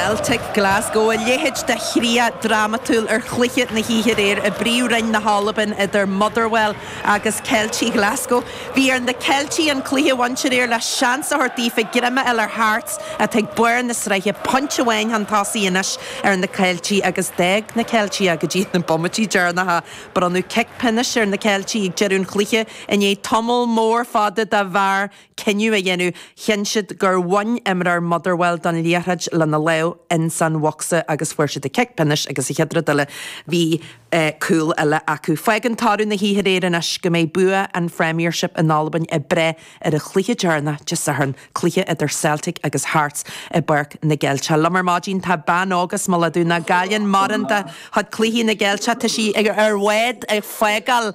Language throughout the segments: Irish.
Celtic Glasgow, a leithéid de chríoch dhrámatúil ar chluiche na hoíche aréir i bPríomhroinn na hAlban idir Motherwell agus Ceiltigh Ghlaschú. Bhí ar na Ceiltigh an cluiche a bhaint aréir le seans a thabhairt daofa greim a fháil ar Hearts atá ag barr na sraithe pointe amháin chun tosaigh anois ar na Ceiltigh agus d'fhág na Ceiltigh go dtí na bomaití deireanacha. Bronnadh cic pionóis ar na Ceiltigh ag deireadh an chluiche i ndiaidh tamall mór fada do VAR. cinneadh a dhéanamh, chinn siad gur bhain imreoir Motherwell don liathróid lena lámh ins an bhocsa agus fuair siad an cic pionóis agus an chéad rud eile. Bhí cúl eile acu. Fágann toradh na hoíche aréir anois go mbeidh bua an Phremiership in Albain ag brath ar an chluiche deireanach Dé Sathairn, cluiche idir Celtic agus Hearts i bPáirc na gCeilteach. Liom ar maidin tá bean óg as Mullach Dubh nach gcailleann mórán de chuid cluichí na gCeilteach. Tá sí ar bhád ag fágáil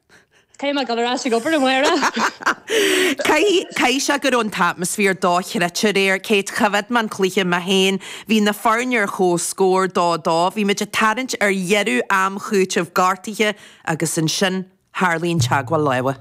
Caithfidh mé a dhul ar ais ag obair, amárach! Caithfidh sé go raibh an t-atmaisféar dochreidte aréir. Kate, choimhéad mé an cluiche mé féin. Bhí na foirne ar chomhscór, dó dó. Bhí muid ag tarraingt ar dheireadh am chúitimh gortaithe agus ansin tharlaigh an teagmháil láimhe.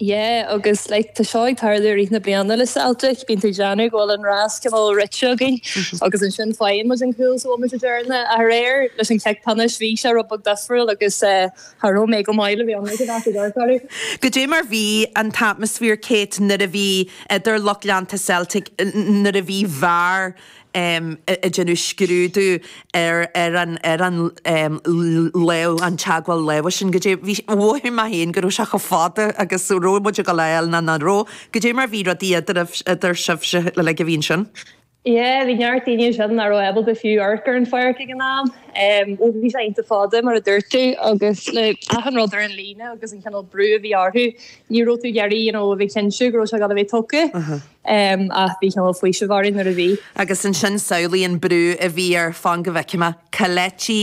Yeah agus like tá seo ag tarlú i rith na bliana le Celtic, bíonn tú ag déanamh go bhfuil an rás cineál rite againn agus ansin faigheann muid an cúl sa bhomaite deireanach. Aréir leis an cic pionóis bhí sé rud beag difriúil agus eh, cha raibh mé go maith le bheith ag an aifreann ar deireadh. Goidé mar bhí an t-atmaisféar Kate nuair a bhí idir lucht leanta Celtic nuair a bhí Var ag déanamh scrúdú ar ar an ar an lámh an teagmháil láimhe sin goidé bhí mhothaigh mé féin go raibh sé chomh fada agus raibh muid ag gabháil a fháil nó nach raibh goidé mar bhí rudaí idir idir sibhse like a bhí ansin. Yeah, bhí neart daoine ansin nach raibh ábalta fiú amharc ar an pháirc ag an am. Ó bhí sé iontach fada, mar a dúirt tú, agus le achan rud ar an líne agus an cineál brú a bhí orthu, ní raibh tú ag iarraidh, you know, a bheith cinnte go raibh sé ag gabháil a bheith tugtha, ach bhí cineál faoiseamh orainn nuair a bhí. Agus ansin samhlaigh an brú a bhí ar, fan go bhfeicfidh mé, Kelechi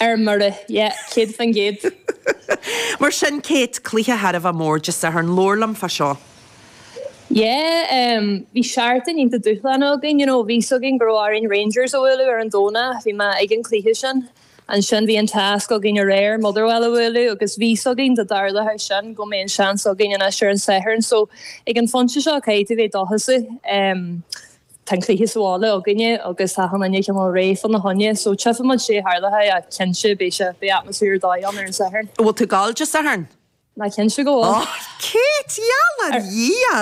Ar mire, yeah, céad faoin gcéad. Mar sin, Kate, cluiche thar a bheith mór Dé Sathairn, labhair liom fá seo. Yeah, bhí seachtain iontach dúshlánach againn, you know, bhí 'fhios againn go raibh orainn Rangers a bhualadh ar an Domhnach, bhí mé ag an cluiche sin. Ansin bhí an tasc againn aréir Motherwell a bhualadh agus bhí 'fhios againn dá dtarlódh sin go mbeadh an seans againn anois ar an Satharn, so ag an phointe seo caithfidh tú bheith dóchasach. Tá an cluiche sa bhaile againne agus tá achan duine cineál réidh fá na choinne, so tífidh muid goidé a tharlóidh ach cinnte beidh sé, beidh atmaisféar ar dóigh ann ar an Satharn. An bhfuil tú ag gabháil Dé Sathairn? Á, cinnte go bhfuil! Oh, Kate! Gheall ar Dhia!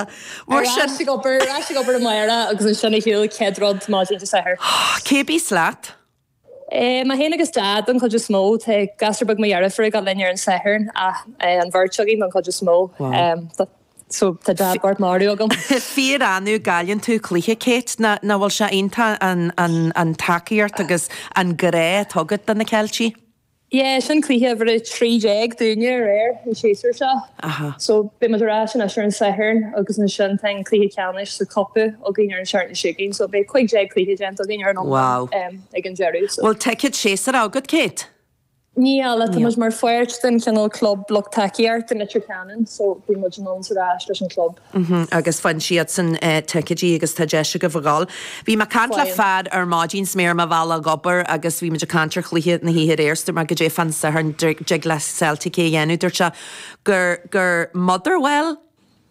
Mar sin. Ar ais ag obair, ar ais ag obair amárach agus ansin ar shiúl chéad rud maidin Dé Sathairn. Cé a bíos leat? Mé féin agus Dad, don chuid is mó. Tá gasúr beag mo dheirfiúr ag dul linn ar an Satharn ach an bheirt againn don chuid is mó. So, tá Dad bocht marbh agam. Fíor-annamh a gcailleann tú cluiche, Kate. Nach bhfuil sé iontach an tacaíocht agus an grá atá agat do na Ceiltigh? Yeah, sin cluiche uimhir a trí déag dúinne aréir, an séasúr seo. Aha. So, beidh muid ar ais anois ar an Satharn agus ansin tá an cluiche ceannais sa cupa againn ar an seachtain seo chugainn, so beidh cúig déag cluiche déanta againn ar an iomlán ag an deireadh, so. Bhfuil ticéad séasúir agat, Kate? Níl, tá muid mar pháirt den chineál club lucht tacaíochta Leitir Ceanainn, so bíonn muid ann 's ar ais leis an club. Mm-hm, agus faigheann siadsan ticéidí agus tá deis agaibh a dhul. Bhí mé ag caint le fear ar maidin 's mé ar mo bhealach ag obair agus bhí muid ag caint ar chluiche na hoíche aréir 's dúirt mé goidé fán Satharn dtig le Celtic é a dhéanamh dúirt sé gur gur Motherwell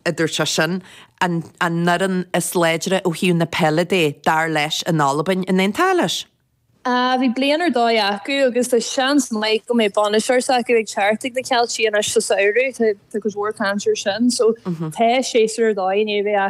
a dúirt sé sin an an fhoireann is láidre ó thaobh na peile de dar leis in Albain, an aontófá leis? Bhí bliain ar dóigh acu agus tá seans maith go mbeidh bainisteoir s'acu ag teacht ag na Ceiltigh anois sa samhradh, tá go leor caint air sin so tá séasúr ar dóigh i ndiaidh a bheith acu.